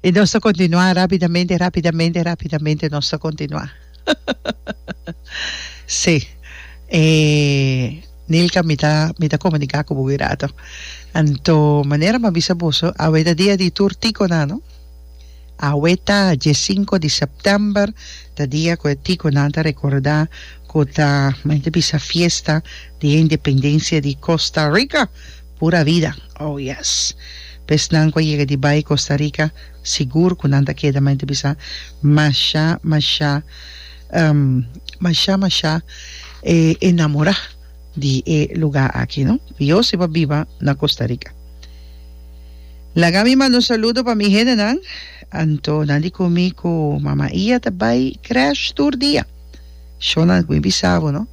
Y nos ta continua rápidamente, rápidamente, rápidamente nos ta continua. sí. Eh, Nilka, mi ta, mi ta comunica con vos rato. Anto, manera ma bisa vos, a weda dia di tur tico na, no? Awe ta die sinku di sèptèmber, ta dia ku e tico nan ta rekorda ku ta mente bisa fiesta di e independensia di Costa Rica. Pura vida! Oh yes! Pes nan ku a yega di bai Costa Rica sigur ku nan ta keda mente bisa masha masha masha masha enamora di e luga aki no. Diosi bo biba na Costa Rica. Laga mi manda un saludo pa mi hendenan, anto nan di ku mi ku Mama Ia ta bai krèsh tur dia. Shonnan ku mi bisa bo no,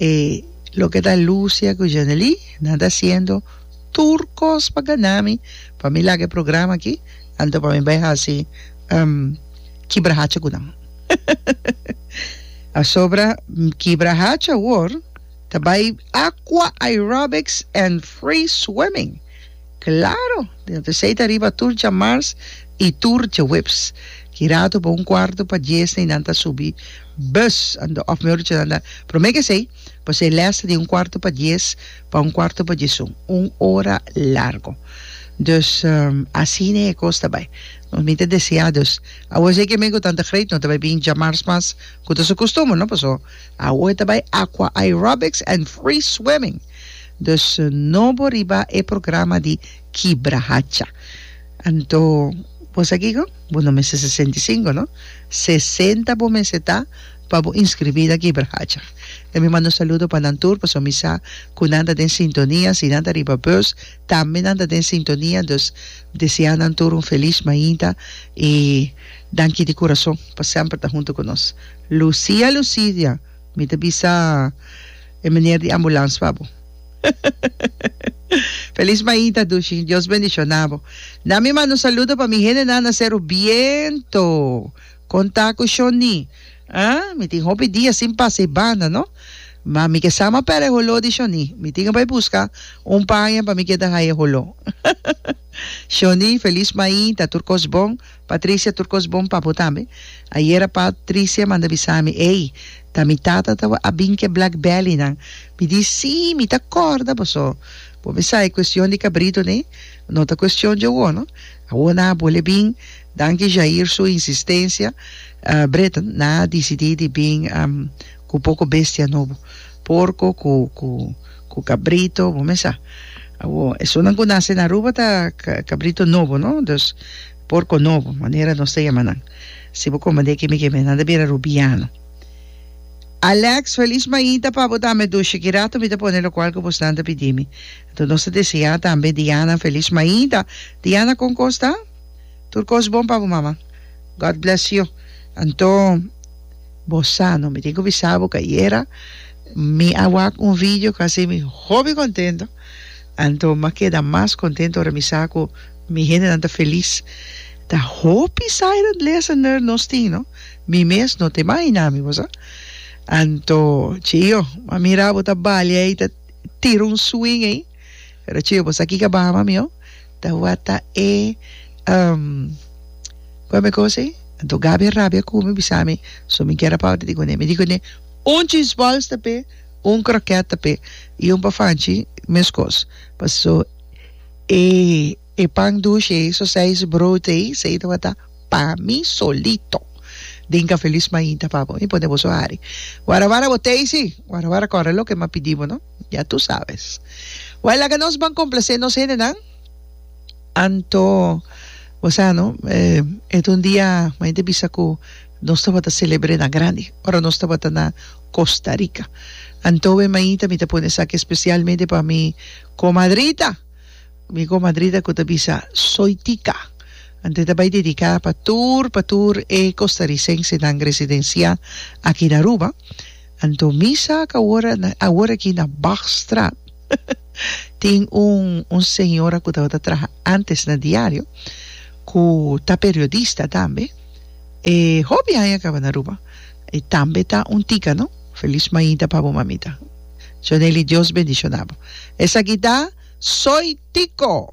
e loke ta Lucia ku Janely, nan ta hasiendo tur kos pa gana mi pa mi laga e programa aki, anto pa mi bai hasi kibra hacha ku nan. Pasobra kibra hacha awor ta bai Aqua Aerobics and Free Swimming. Claro! Den a tresei ta riba tur djamars y tur djeweps. Kirato pa un cuarto pa dies y nan ta subi bus ando, of mehor dicho nan ta prome ke esei pa esei les ta di un cuarto pa dies pa un cuarto pa diesun, un ora largo. Dus asina e cos ta bay. Nos minte desea dus awo esei ke men cu tanta great no ta bay bin djamars mas cu ta su costumber no, paso awo e ta bay aqua aerobics and free swimming. Dus no bo riba e programa di kibra hacha. Anto bo sa kico? Bo no mester sesenta i sinku, no. Sesenta bo mester ta pa bo inscribí na kibra hacha. Dja mi manda un saludo pa nan tur pasobra mi sa cu nan ta den sintonia. Si nan ta riba bus tambe nan ta den sintonia. Dus desea nan tur un feliz mainta i danki di curazon pa semper ta hunto cu nos. Lucia Lucidia. Mi ta bisa e meneer di ambulans pa bo. Feliz maita Dushi. Dios bendiciona bo. Na mi manda un saludo pa mi hendenan na Seru Biento. Con ta cu Shoni? Ah, mi tin hopi dia sin pasa e banda, no? Ma mi ke sama pera e holo di Shoni. Mi tin ke bai busca un paña pa mi keda haña e holo. Shoni, feliz maita, tur cos bon. Patricia, tur cos bon pa bo tambe. Ayera pa tricia manda bisa mi, ey, ta mi tata tawar a bin ke black belly nan. Mi di, si, mi ta corda boso. Bo mi sa e cuestion di cabrito ne, no ta cuestion dje awor no. Awor nan a bole bin, danki Jair su insistencia, Breton, nan a dicidi di bin cu poco bestia nobo. porco cu cu cu cabrito bo mesa awo esonan cu nace na Aruba ta cabrito nobo no dus porco nobo manera nos ta yama nan si bo comandé kemi kemi nan ta bira Rubiano Alex Feliz Mainta pa bo tambe dushi ki rato mi ta pone locual cu bosnan ta pidimi enton nos ta desea tambe Diana Feliz Mainta Diana con cos ta tur cos bon pa bo mama God bless you anto. Bo sano, mi tin cu bisa bo cu ayera mi a wak un video cu a haci mi hopi contento, anto m'a keda mas contento ora mi sa cu mi hendenan ta feliz. Ta hopi silent listener nos tin, no? Mi mes no ta imagina mi, bo sa? Anto, chio, m'a mira bo ta balia ey, ta tira un swing ey. Pero chiyo bo sa kiko a baha mami oh. Tawata e um, kua mi cosa ei? Anto Gabi a rabia ku mi bisa mi so mi kier a pau ta di kuné. Mi di kuné un cheese balls ta pe un kroket ta pe i un pafanchi meskos paso e e pan dushi ei so seis brood ei sei tawata pa mi solito den Cafe Luis Mainta pa bo mi pone bo so hari wara wara bo tasty wara wara kore loke mi a pidi bo no. Ya tu sabes. Wai laga nos ban complacé nos hendenan. Anto bo sa no e ta un dia mei ta bisa cu nos tabata celebr'e na grandi ora nos tabata na Costa Rica. Anto we meita mi ta pone esaki especialmente pa mi comadrita, mi comadrita cu ta bisa Soytica. Anto e ta bay dedica pa tur pa tur e costarricensenan residencia aki na Aruba. Anto mi sa ak awor awor aki na Bachstraat tin un un señora ku tabata traha antes na diario ku ta periodista tambe e hopi aña kaba na Aruba e tambe ta un tika no felis mainta pa bo mamita Jonely Dios bendishonabo esaki ta Soy Tiko.